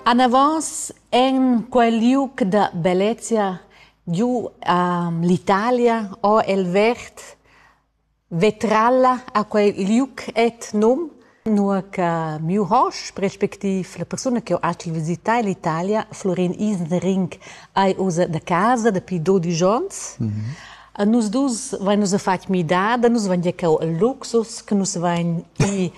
Anavos en quel liug da bellezia giu a l'Italia ho el vert vetralla a quel liug et num, nua che miu hosp respectiv la persuna che ho acci visità l'Italia, Florin Isenring, ei ussa da casa dapi dodisch onns. A nus dus vain nus a fatg midada, nus vain gia cau il luxus, che nus vain i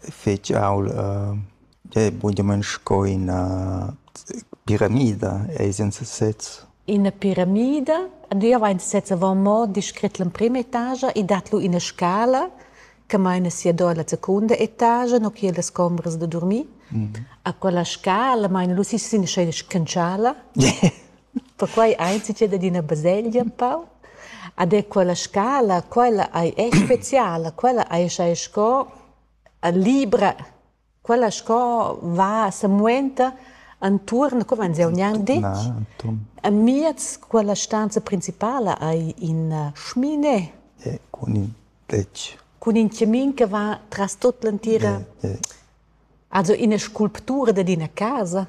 fetsch aul bunamain sco ina piramida ei senza sez. Ina piramida? Jeu vegn sez avon mo descret l'emprema etagia e dat lu ina scala che meina sia do alla secunda etagia, no che las combras da durmir. A quella scala meina lu si sin scena scantschala. Perquai ein ins entschet ad ina baselgia empau. Ed è quella scala, quella ei è speciala, quella ei schai sco libra, quella sco va semuenta entuorn, co vegn jeu gnanc detg? Amiez quella stanza principala ei ina schmine. Cun in tetg. Cun in chamin che va tras tut l'entira. Also ina sculptura dad ina casa.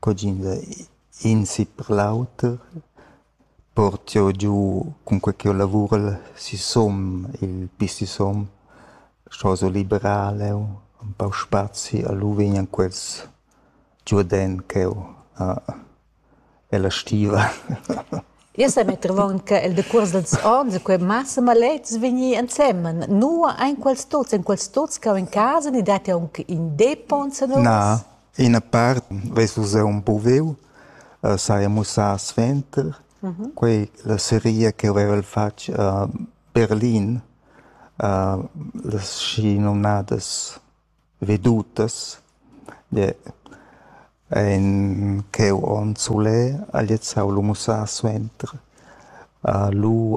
Cugin da in sit per l'auter port jeu giu cunquei ch'jeu lavurel sisum il bi sisum, sco so liberal jeu, empau spazi e lu vegnan quels giu dent cheu ella stiva. Io sa metter avon che il decuors dals onns e quei massa maletgs vegnir ensemen. Nua ein quels tuts? Ein quels tuts cau en casa ni dat jeu aunc in depot enzatgos? Na. Ina part vess vus empruviu, saja mussà suenter, quei la seria che haveva fatg a Berlin, las schinomnadas vedutas, en quei onn sulè ha gliez lu mussà suenter. Lu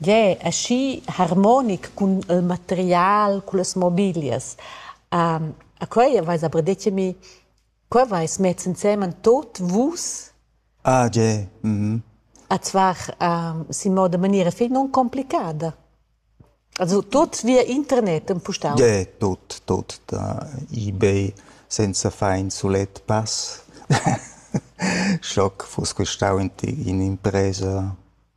Gie, aschi harmonic cun il material, cullas mobilias. a quei aveis aber detg a mi, co aveis mess ensemen tot vus? Ah gie, mhm. Ed zwar sin moda maniera fetg nuncomplicada. Also tot via internet empustau. Gie, tot, tot da ebay senza far in sulet pass. Schock fuss questau in impresa.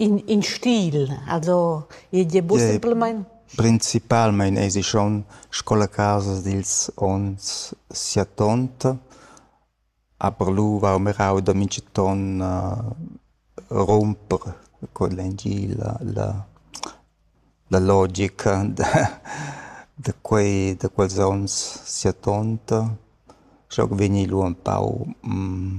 In, in stil, also id è simplamain? Principalmain esi schon sco la casa dils onns siatont, aber lu va mirau da mintgaton uh, rumper con l'engil la, la, la logica da, da, quei, da quels onns siatont. Schoc vegni lu empau mm,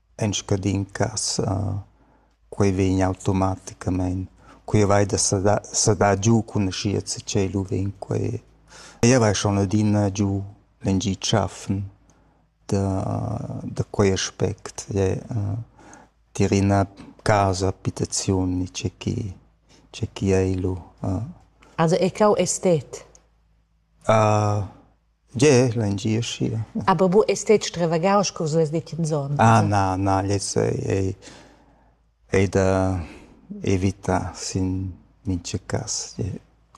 En scadin cass quei vegn automaticamein. Quei vai da sedar sedar giu cun aschia che tschel u vegn quei. Jeu vai schon adina giu lengi tschaffen da da quei aspect. Tier ina casa abitaziun ni tgei che tgei che ei lu. Also è cau estet? Gie, l'engie aschi. Ah babu è stet stravagau sco vus detg enzon. Ah na, na, lez ei, ei da evitar sin mintga cass.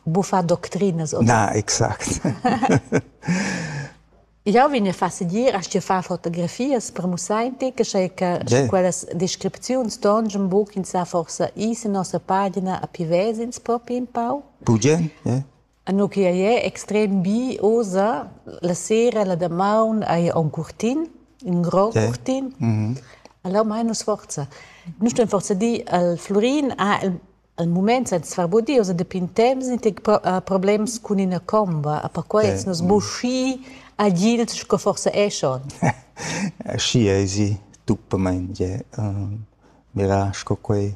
Bufa doctrinas. Na, exact. Jau vegn a far segir a sti far fotografias per musainti che sei che quellas descripziuns ston schon buc in sa forsa is in nossa pagina a pivezins propi in pau. Bugen, ja. Nua che ei è extrem bi oza, la sera, la damaun hai aunc curtin, in grond okay. curtin. Mm -hmm. Allora mai nus forza. Nus ston forza di al Florin, ah, il, al mument senza far bodi, oza depintens in problems cun ina comba, a perquei okay. nus buschi agils sco forza eschon. Schi ei si, tuppamein, je, uh, mira, sco quei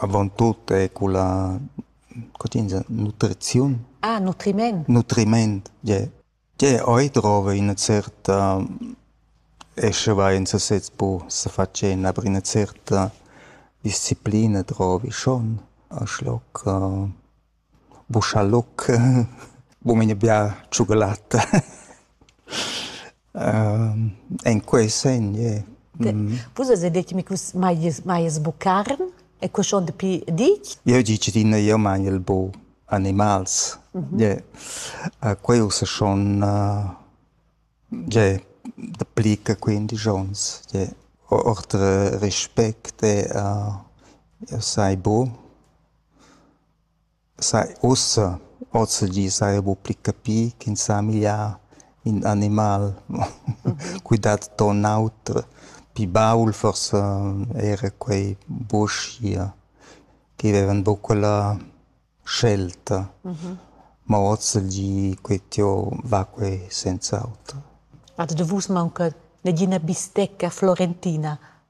Avantut è culla co tg'ins dice nutriziun. Ah, nutriment. Nutriment, tg'è. Tg'è oi drova ina certa e sche vai en sasez po sa fatschentar aber ina certa disciplina drovi schon a schloc Buschaloc, bu mei n'ai bia tschugalatta. En quei segn ie. Vus eis detg mi che vus maies maies buc carn e quei schon dapi ditg? Jeu di che tina, jeu maiel bu animals. Ie. Quei ussa schon ie dapli che quindisch onns. Ie. Ord respect, jeu sai bu. Sai ussa, ozilgi saja buc pli capì ch'ins ha migliar in animal. Quei dat ton auter, pli baul forsa era quei buschia che vevan buc quella scelta. Ma ozilgi quei tieu va quei senz'auter. Ad vus maunca negina bistecca florentina?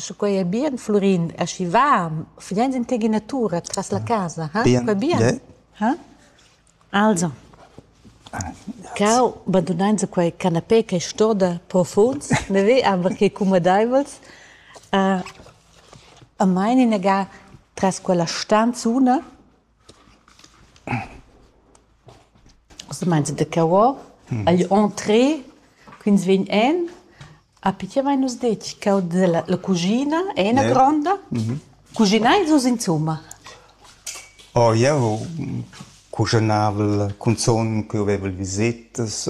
Sche quei ei bien Flurin, aschi va, fegls in tgina tura tras la casa, ha? Quei bien? Ha? Also, cau, bandunein se quei canapé che stoda profunds, ne ve aber che cumadeivels, a mein inaga tras quella stanzuna Ussa mainza da cavò agl entree ch'ins vegn en. A pitschen vein nus detg cau dalla la cuschina è ina Yeah. gronda. Cugineis vus insumma? Oh, jeu cuschonavel cunzun ch'jeu vevel visetas.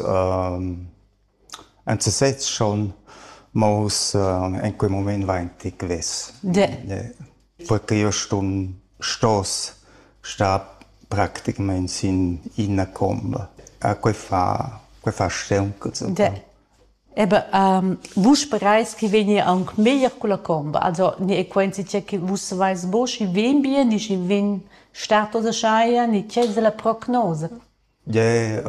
En sesez schon, ma ussa in quei mument vain ti gnüs. Perche io sun stos star practicamaing sin ina comba. A quei fa quei fa stanca zucca. Ebe vus sperais chi vegni aunc meglier culla comba, also ne è quenzi che chi vus savais bo schi vegn bien, di schi vegn stato da schaja, ne che es la prognosa? Ie,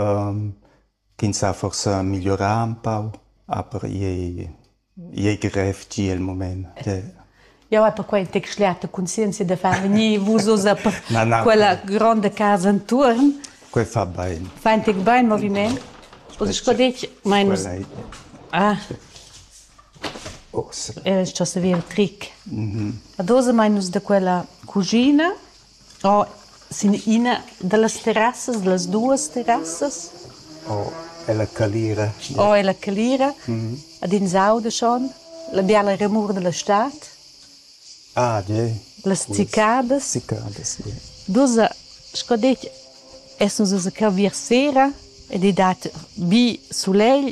Ch'ins ha forsa migliorà ün pau, aber i ei grev gia il mument. Jau hai perquai il text schliata conscienzia da far vegnir vus oz a quella gronda casa enturn. Quel fa bain. Fa in tec bain moviment. Oz sco detg, mai nus... Ah. Era sco se via tric. Ad oz mai nus da quella cugina Oh, sin ina dallas terrassas, dallas duas terrassas. Oh, ella calira. Oh, ella calira. Ad ins auda schon la biala remur dalla stad. Ah, ja. Las cicadas. Cicadas, ja. Dus, sco detg, essan se cavir sera ed ei dat bi sulegl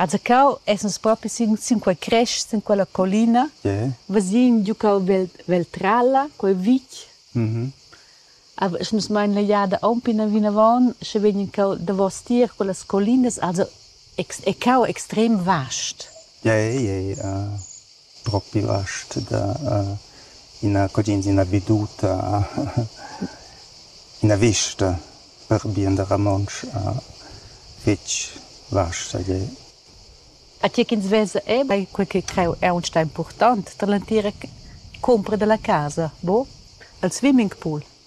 Azacau essas propi sin, sin quei crest, sin quella collina, yeah. vesin giu cau vel, Veltralla, quei vitg. Mm-hmm. Esch nus mein la jada aunc pina vinavon, sche vegn cau davos tier quellas collinas, also è, è cau extrem vast. Yeah, yeah, yeah. Uh. propi last da ina cudienza, ina veduta, ina vista per bien da romontsch fetg vasta gie. A tgi ch'ins vesa era quei che creu aunc impurtant dall'entira cumpra dalla casa, buca? Il swimmingpool.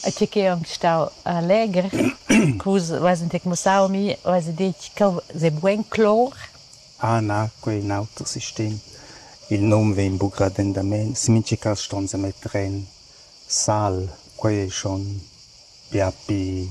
E tgi ch'ei aunc stau legher, cu vus veis aunc mussau mi, veis detg ch'el sei bugen clor. Ah na, quei è in auter sistem. Il num vegn buc radentamein. In mintga cass ston se metter en sal. Quei ei schon bia pi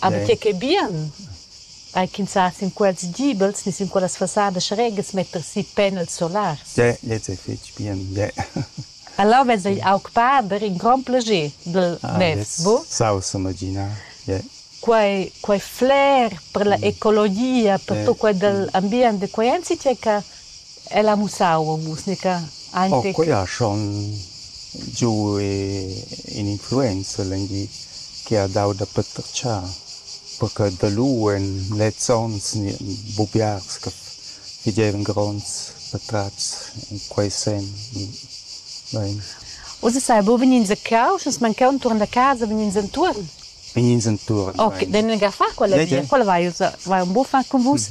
Aber tge ch'è bien, ei ch'ins sa sin quels gibels ni sin quellas fassadas regas metter si panels solars. Dä, lez è fetg bien, dä. Alavetz ei aug pader in grond plager dil ah, mess, bu? Saus imaginar, yeah. Quei, quei flair per la ecologia, per tot quei dell ambient de quei ensi tgei che El ha mussau musica aunc. Quei ha schon giu in'influenza legni che ha dau da patratgar, perche da lu en lezs onns buc biars che fagevan gronds patratgs en quei senn. Bein. Uss sai buca vegnir ins a Causch, nus mancau entuorn da casa, vegnir entuorn. ins enturn. Ok, den ga fa quella via, quella vai, vai un buffa con vus.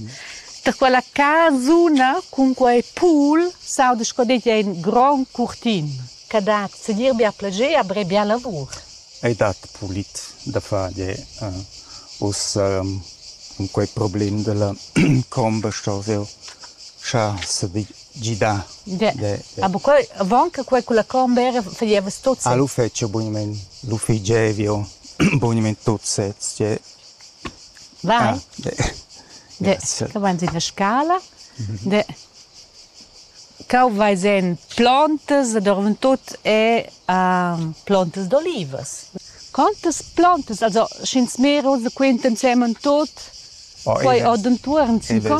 Da quella casuna cun quei pool sauda sco det ein gron curtin. Che dat segir bia plager a bre bia lavur. Ei dat pulit da far de uh, us um, quei problem della comba sto veu. Scha se vi gidà. Ah, bu quei, avant che quei culla Cornbera faglieva tot sez. Ah, lu feci bunament, lu figevio bunament tot sez. Cioè, Vai. Ah, Grazie. Che vai in la scala? De. Cau vai sen plantas, dovren tot e um, plantas d'olivas. Quantas plantas, also sch'ins mera usa quent ensemen tot, poi odenturen sin con.